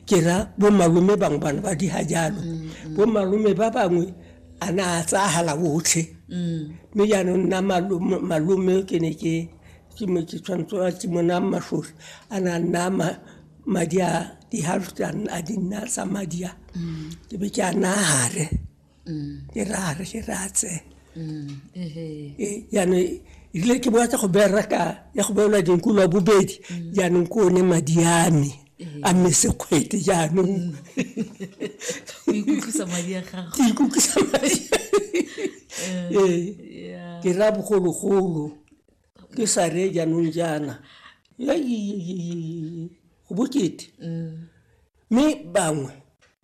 ke ra bomalome bangwe bana ba di ga jalo mm-hmm. bomalome ba bangwe a na a tsagala otlhe mm. mme jaanong nna malome ke ne ke ke mo ke tshwanetse a ke mona mashosi a na nna madi a di-halftan a di nna sa madi a mm. ke be ke a nagare ke rare ke ratse jaanong ebile ke boa tsa go bereka ya go beelwa dinku lwa bobedi jaanong ke one madi a me a mme sekgwete jaanong o ikutlwisa madi a gago ke ikutlwisa madi ee ke ra bogologolo ke sa re jaanong jaana go bokete mme bangwe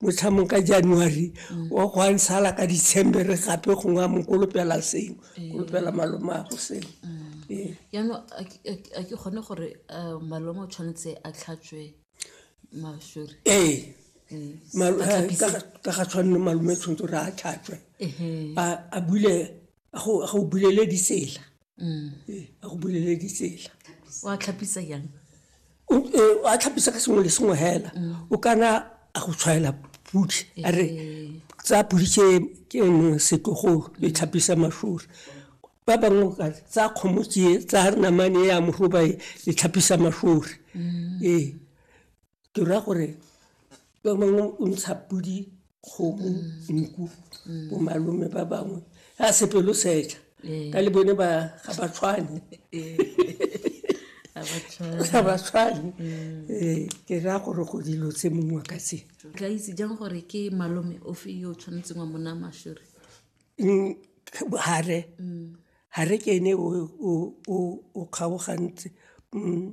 motlhamong ka january wa go a nsala ka december gape gongwe a mokolopela sengwe kolopela malomago sengwe ee jaanong a ke- a ke- a ke kgone gore um malome o tshwanetse a tlhatswe masori ee Mm. Mal- A eh, tlhapise. ka ga- ka ga tshwanne malome tshwanetse gore a tlhatswe Ehe. a a bule a go a go bulele ditsela Ee, a go bulele ditsela wa tlhapisa yang O- ee, a tlhapisa ka sengwe le sengwe hela o kana a go tshwaela pudi a re tsa pudi ke ke eno setlogolo e tlhapisa mashori ba bangwe ka re, tsa kgomo ke tsa re namane ya morobae e tlhapisa mashori ee ke raya gore ka mangwe o ntsha podi kgomo nku bo malome ba bangwe a sepelo seja Ee. ka le bone ba ga ba tshwane ga ba tshwane Ee, ke raya gore go dilo tse mongwe ka tse tla itse jang gore ke malome ofe yo o tshwanetseng wa mona mashore Mm, hare hare ke ene o- o o- o kgaogantse Mm,